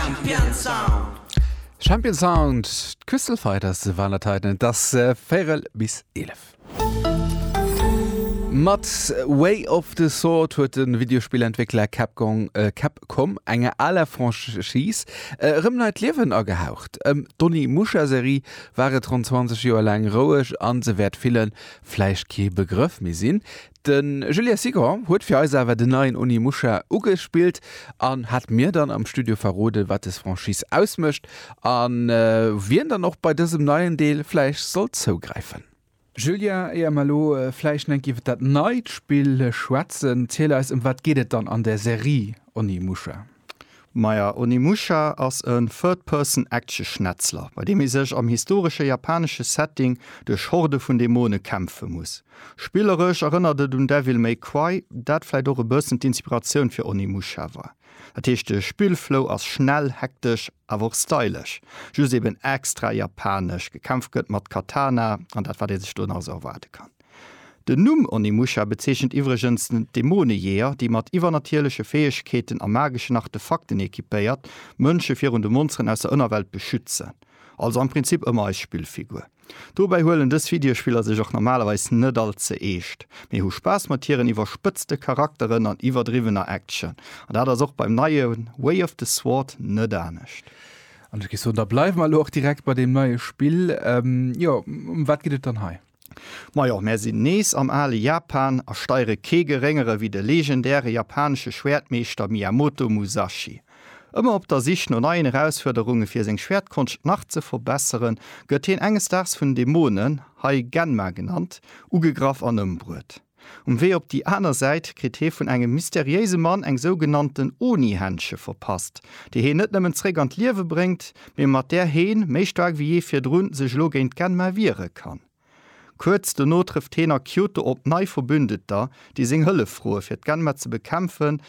Champion Sound. Champion Sound, d'Crystal Fighters waren dat heiten. Et ass véierel bis eelef. Mat Way of the Sword huet de Videospillentwéckler Capcom enger aler Franchise erëm neit Liewen agehaucht. Ëm d'Onimusha-Serie war et ronn 20 Joer laang roueg a se wäert villen vläicht kee Begrëff méi sinn. De Julien Sigon huet fir eis awer den neien Onimusha ugespillt an hat mir dann am Studio verroden, wat des Franchise ausmécht a wien dann och bei dësem neien Deel vläicht soll zougräifen. Julien, éier mer elo vläicht enk iwwer dat neit Spill schwätzen, ziel eis, ëm wat geet et dann an der Serie Onimusha? Maja, Onimusha ass e Third-Person-Action-Schnetzler, bei deem ee sech am historesche japanesche Setting duerch Horde vun Dämone kämpfe muss. Spilleresch erënnert et un Devil May Cry, dat vläicht och e bëssen d'Inspiratioun fir Onimusha war. Dat heescht, de Spillflow ass schnell, hektesch, awer och stylesch. Just eben extra japanesch, gekämpft gëtt mat Katana an dat, wat ee sech do nach esou erwaarde kann. Den Numm Onimusha bezeechent iwwregens d'Dämonejeeër, déi mat iwwernatierleche Fäegkeeten a mageschen Artefakten equipéiert d'Mënsche virun de Monsteren aus der Ënnerwelt beschützen. Also am Prinzip ëmmer eis Spillfigur. Dobäi huelen dës Videospiller sech och normalerweis net all ze eescht, mee hu Spaass mat hiren iwwerspëtzte Charakteren an iwwerdriwwener Action. An dat ass och beim neie Way of the Sword net anescht. An ech géif soen, da bleiwe mer elo och direkt bei deem neie Spill. Jo, ëm wat geet et dann hei? Majo, mär sinn nees am ale Japan a steiere kee geréngere wéi de legendäre japanesche Schwäertmeeschter Miyamoto Musashi. Ëmmer op der Sich no neien Erausfuerderunge fir seng Schwäertkonscht nach ze verbesseren, gëtt hien enges Daags vun Dämonen, hei Genma genannt, ugegraff an ëmbruet. Um Wee op déi aner Säit kritt hee vun engem mysteriéise Mann eng sougenannten Oni-Händsche verpasst, déi heen net nëmmen zréck an d'Liewe bréngt, mee mat där heen, méi staark wéi jee virdrun, sech elo géint d'Genma wiere kann. Kuerz dono trëfft heen a Kyoto op nei Verbündeter, déi seng Hëllef froe fir d'Genma ze bekämpfen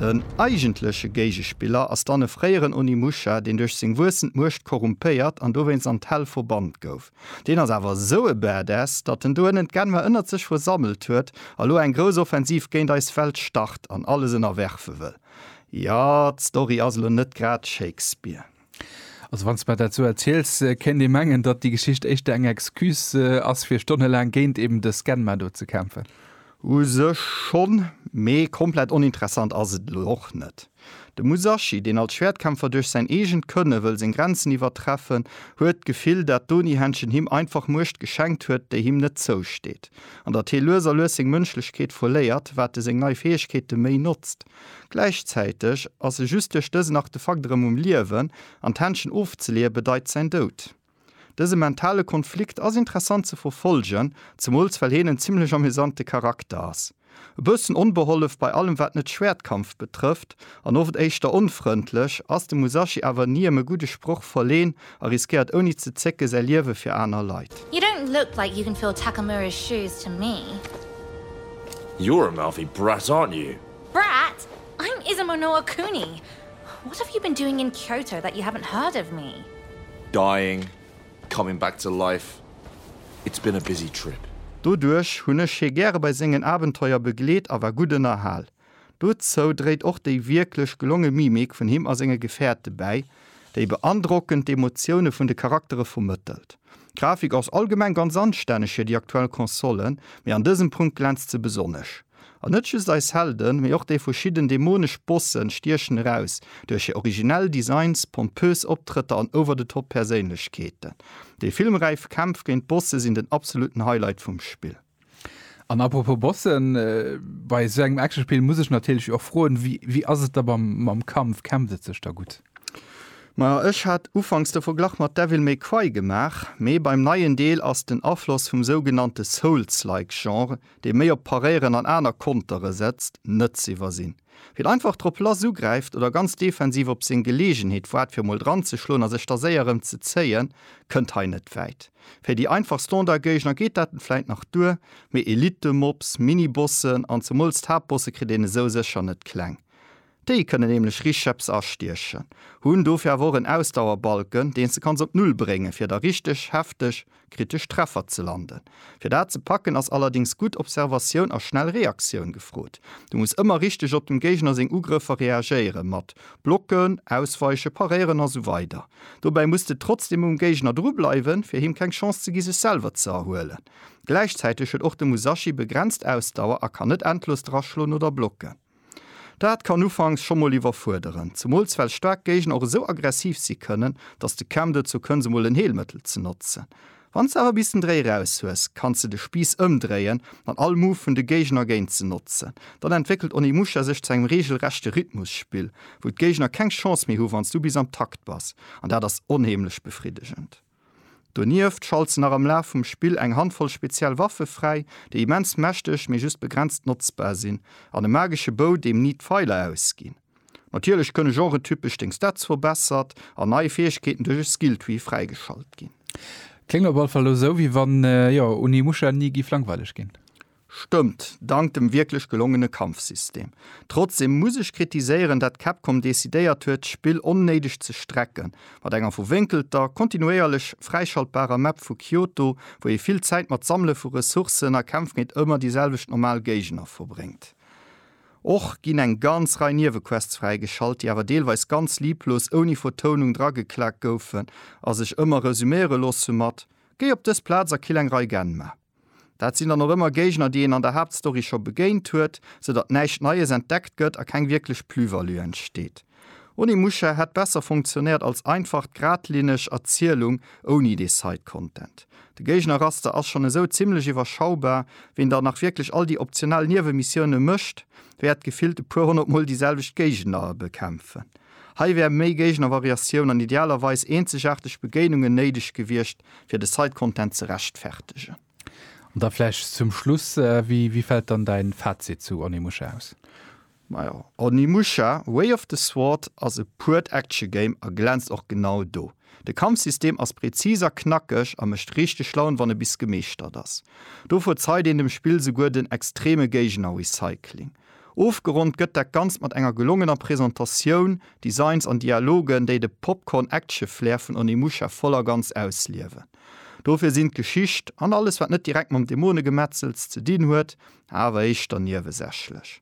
Den eigentleche Géigespiller ass dann e fréieren Onimusha, deen duerch seng wuessend Muecht korrumpéiert an dowéinst an d'Hell verbannt gouf. Deen ass awer esou e Badass, datt en do ënnen d'Genwer ënnert sech versammelt huet a lo eng grouss Offensiv géint eis Welt start an alles ënnerwerfe wëll. Jo, d'Story ass lo net grad Shakespeare. Also wann s mer dat sou erziels, kéint ee mengen, datt déi Geschicht éischter eng Excuse ass fir stonnelaang géint eben de Scanma do ze kämpfen. U sech schonn, mee komplett oninteressant ass et elo och net. De Musashi, deen als Schwäertkämpfer duerch säin eegent Kënne wëll seng Grenzen iwwertreffen, huet d'Gefill, dat d'Oni-Händchen him einfach Muecht geschenkt huet, déi him net zousteet, an datt hie lues a lues seng Mënschlechkeet verléiert, wat e seng nei Fäegkeete méi notzt. Gläichzäiteg ass e just duerch dësen Artefakt erëm um Liewen, an d'Händchen ofzeleeë bedeit säin Doud. Dëse mentale Konflikt ass interessant ze verfollgen, zemools well heen en zimmlech amüsante Charakter ass. E bëssen onbehollef bei allem wat net Schwäertkampf betrëfft, an oft éischter onfrëndlech, ass de Musashi awer niem e gudde Sproch verleen, A riskéiert ouni ze zécke säi Liewe fir aner Leit. You don't look like you can fill Takamura's shoes to me. You're a mouthy brat, aren't you? Brat? I'm Izumo no Okuni! What have you been doing in Kyoto that you haven't heard of me? Dying, coming back to life, it's been a busy trip. Doduerch hunn ech hie gäre bei sengen Abenteuer begleet a war gutt ënnerhal. Dozou dréit och déi wierklech gelonge Mimik vun him a senge Gefäerte bäi, déi beandrockend d'Emotioune vun de Charaktere vermëttelt. D'Grafik ass allgemeng ganz anstänneg fir déi aktuell Konsole, mee an dësem Punkt glänzt se besonnesch. An net just eis Helden, mee och déi verschidden dämonesch Bossen stiechen eraus duerch hir originell Designs, pompös Optrëtter an over-the-top Perséinlechkeeten. Déi filmräif Kämpf géint d'Bosse sinn den absolutten Highlight vum Spill. An apropos Bossen, bei esou engem Actionspill muss ech natierlech och froen, wéi, wéi ass et da mam, mam Kampf? Kämpft et sech da gutt? Majo, ech hat ufanks de Verglach mat Devil May Cry gemaach, mee beim neien Deel ass den Afloss vum sougenannte Souls-like Genre, dee méi op Paréieren an aner Kontere setzt, net z'iwwersinn. Wien einfach drop lass ugräift oder ganz defensiv op seng Geleegenheet waart fir mol dran ze schloen a sech da séier erëm ze zéien, kënnt hei net wäit. Fir déi einfach Standardgéigner geet dat vläit nach duer, mee Elitemobs, Minibossen an zemools d'Haaptbosse kritt een esou sécher net kleng. Déi kënnen nämlech richeps astiechen, hunn dofir awer och en Ausdauerbalken, deen s de kanns op Null bréngen, fir da richteg hefteg kritesch Treffer ze landen. Fir dat ze packen ass allerdéngs gutt Observatioun a schnell Reaktioun gefrot. Du muss ëmmer richteg op dem Géigner seng Ugrëffer reagéieren, mat Blocken, Ausweichen, Paréieren a sou weider. Dobäi muss de trotzdem um Géigner dru bleiwen, fir him keng Chance ze gi sech selwer ze erhuelen. Gläichzäiteg huet och de Musashi begrenzt Ausdauer a kann net endlos draschloen oder blocken. Dat kann ufanks scho mol iwwerfuerderen, zemools well staark Géigner och esou aggressiv si kënnen, datt de Cam dozou kënns emol en Heelmëttel ze notzen. Wann s de awer bis den Dréi raus hues, kanns de de Spiiss ëmdréien an all Move vun de Géigner géint se notzen. Dann entwéckelt Onimusha sech zu engem reegelrechte Rhythmusspill, wou d'Géigner keng Chance méi hu wann s du bis am Takt bass, an dat ass onheemlech befriddegend. Donieft schalt se nach am Laf vum Spill eng Handvoll speziell Waffe fräi, déi immens mächteg, mee just begrenzt notzbar sinn, an e magesche Bow, deem ni d'Feiler ausginn. Natierlech kënne genretypesch deng Stats verbessert an nei Fäegkeeten duerch e Skilltree fräigeschalt ginn. Kléngt op all Fall elo sou, wéi wann, jo, Onimusha ni giff langweileg ginn. Stëmmt, dank dem wierklech gelongene Kampfsystem. Trotzdeem muss ech kritiséieren, dat Capcom decidéiert huet, d'Spill onnéideg ze strecken, mat enger verwénkelter, kontinuéierlech fräischaltbarer Map vu Kyoto, wou ee vill Zäit mat Sammele vu Ressourcen a Kämpf géint ëmmer déi selwecht normal Géigner verbréngt. Och ginn eng ganz Rei Niewequests fräigeschalt, déi awer deelweis ganz lieblos, ouni Vertounung drageklaakt goufen a sech ëmmer resuméiere loosse mat, Géi op dës Plaz a kill eng Rei Genma. Dat sinn dann och ëmmer Géigner, déi een an der Haaptstory scho begéint huet, sou datt näischt Neies entdeckt gëtt a keng wierklech Plus-value entsteet. Onimusha hätt besser funktionéiert als einfach, gradlinneg Erzielung ouni dee Side-Content. De Géigner-Raster ass schonn esou zimmlech iwwerschaubar, ween da nach wierklech all déi optional Niewemissioune mécht, wäert gefillt e puer honnert Mol déi selwecht Géigner bekämpfen. Hei wär méi Géigner-Variatioun an idealerweis eenzegaarteg Begéinungen néideg gewiescht, fir de Site Content ze rechtfertegen. An da vläicht zum Schluss, wéi fält dann däin Fazit zu Onimusha aus? Majo, Onimusha, Way of the Sword ass e puert Action Game a glänzt och genau do. De Kampfsystem ass präzis a knackeg a mécht richteg Laun wann e bis gemeeschtert ass. Do verzeit een dem Spill souguer den extreme Géigner-Recycling. Ofgeronnt gëtt dat Ganzt mat enger gelongener Presentatioun, Designs an Dialogen, déi de Popcorn-Action-Flair vun Onimusha voll a ganz ausliewen. Dofir sinn d'Geschicht, an alles wat net direkt mam Dämonegemetzels ze dinn huet, awer éischter niewesächlech.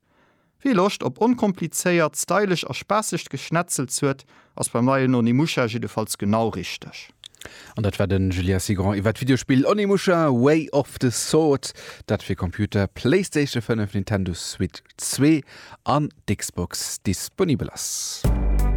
Wie Loscht op onkomplizéiert, stylesch a spaassegt Geschnetzels huet, Ass beim neien Onimusha jiddefalls genau richteg. An dat war den Julien Cigrand iwwert d'Videospill Onimusha, Way of the Sword, dat fir Computer, Playstation 5, Nintendo Switch 2 an d'Xbox disponibel ass.